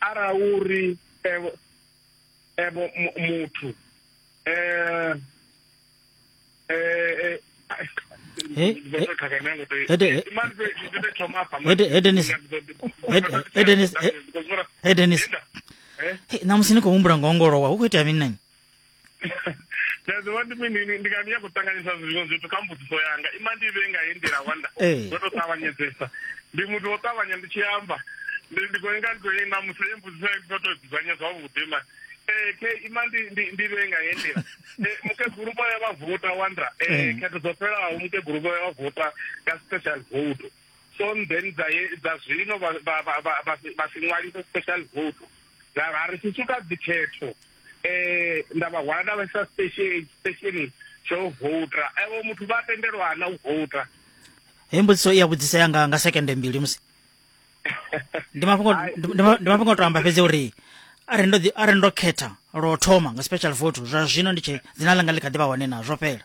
ara uri evo evo muthu eh eh edenis namusi ni khou humbula ngo ongolowa hu khou itea mini nani nda ḓivha ndi mini ndi nga ndi ya khou ṱanganyisa zwiṅwe zwithu kha mbudziso yanga ima ndi vhe nga heyi nḓila wanda ndo to ṱavhanyedzesa ndi muthu wo ṱavhanya ndi tshi amba ndi ndi khou nga ndi khou na musi ye mbudziso ya ndo to dzudzanya zwavhuḓi ma ee ke ima ndi ndi vhe nga heyi nḓila mukegulu vho ya vha vota wanda ee khetho dzo fhelaho mukegulu vho ya vha vota nga special vote so then dza dza zwino vha vha vha vha si ṅwalise special vote ra ri si suka dzikhetho um nda vha hwala nda vhaisa stationi tsha u vouta evo muthu vha tendelwa na u vouta heyi mbudziso i ya vhudzisa yanga nga sekende mbili musi ndi mafhungo ndi ma- ndi mafhungo o to amba fhedzi uri arali ndo ḓi- arali ndo khetha lwo thoma nga special vote zwa zwino ndi tshe dzina ḽanga ḽi kha ḓi vha hone na zwo fhela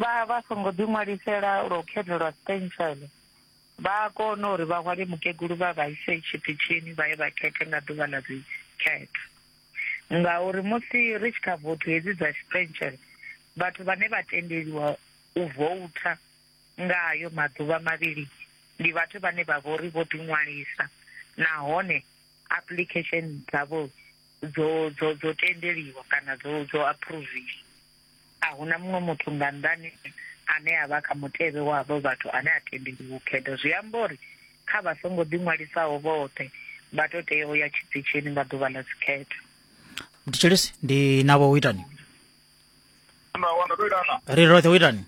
vha vha songo ḓi ṅwalisela lwa u khethelwa stencil vha a kona uri vha hwale mukegulu vha vha ise tshiṱitshini vha ye vha khethe nga ḓuvha ḽa dzikhetho ngauri musi ri tshi kha vothu hedzi dza stencil vhathu vhane vha tendeliwa u voutha nga ayo maḓuvha mavhili ndi vhathu vhane vha vho ri vho ḓi ṅwalisa nahone application dzavho dzo dzo dzo tendeliwa kana dzo dzo approviwa A hu na muṅwe muthu nga nnḓani ane a vha kha mutevhe wa avho vhathu ane a tendeliwa u khetha. Zwi amba uri kha vha songo ḓiṅwalisaho vhoṱhe vha tou tea u ya tshipitshini nga ḓuvha ḽa dzikhetho. Mthetshelesi ndi navho u itani Nda wana ndo itana. ri roṱhe u itani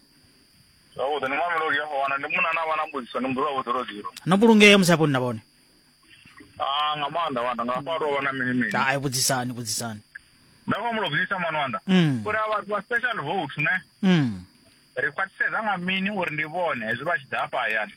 Zwavhuḓi ni mamelodi ya wana ndi munna na vha na mbudziso ni mbudziwa vhudzulozilo. no vhulungea musi hafho ni na vhone ah nga maanḓa wanda nga fha tovha na mini mini ai vhudzisani vhudzisani nda khou mulo vhudzisa mwana wanda Mm. uri a vhathu vha special vote ne mm. ri khwaṱhisedza nga mini uri ndi vhone hezwi vha tshi ḓa hafha hayani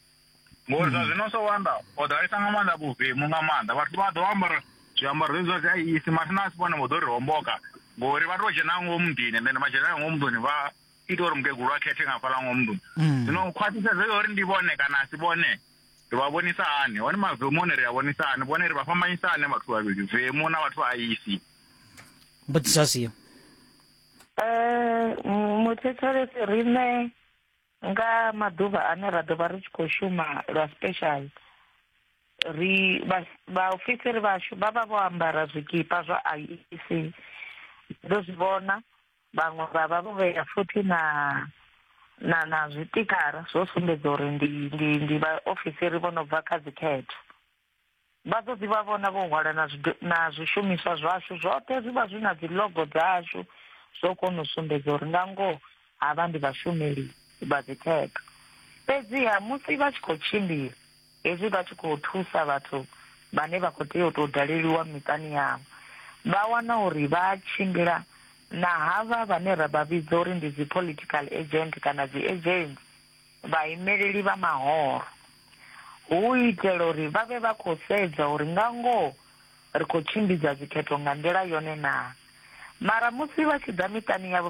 ngori zwa zwino so wanda o ḓalesa nga maanḓa vhuvemu nga maanḓa vhathu vha ḓo ambara zwiambaro zwezwi zwa dzi iisi mathina a si vhone vho ḓo ri homboka ngori vha tou dzhena ngomu muḓini and then vha dzhena ngomu muḓini vha ita uri mukegulu a khethe nga fhaḽa ngomu muḓini Mm. zwino khwaṱhisedzo ya uri ndi vhone kana a si vhone Ri vha vhonisa hani? Hone mavemoni ri a vhonisa hani? Vhone ri vha fhambanyisa hani vhathu vhavhili, vemu na vhathu vha aisi? Mbudziso a siyo. Eh, muthetshelesi riṋe nga maḓuvha ane ra ḓo vha ri tshi khou shuma lwa special ri vhaofisiri vhashu vha vha vho ambara zwikipa zwa IEC ndo zwi vhona vhaṅwe vha vha vho vhea futhi na na na zwitikara zwo sumbedza uri ndi ndi ndi vhaofisiri vho no bva kha dzikhetho vha ḓo ḓi vha vhona vho hwala na na zwishumiswa zwashu zwoṱhe zwi vha zwi na dzi logo dzashu zwo kona u sumbedza uri nga ngoho havha ndi vhashumeli vha dzikhetho fhedziha musi vha tshi khou tshimbila Hezwi vha tshi khou thusa vhathu vhane vha khou tea u tou daleliwa miṱani yavho, vha wana uri vha a tshimbila na havha vhane ra vha vhidza uri ndi dzi-political agent kana dzi-agents, vhaimeleli vha mahoro, hu u itela uri vha vhe vha khou sedza uri nga ngoho ri khou tshimbidza dzikhetho nga nḓila yone naa. Mara musi vha tshi ḓa miṱani yavho,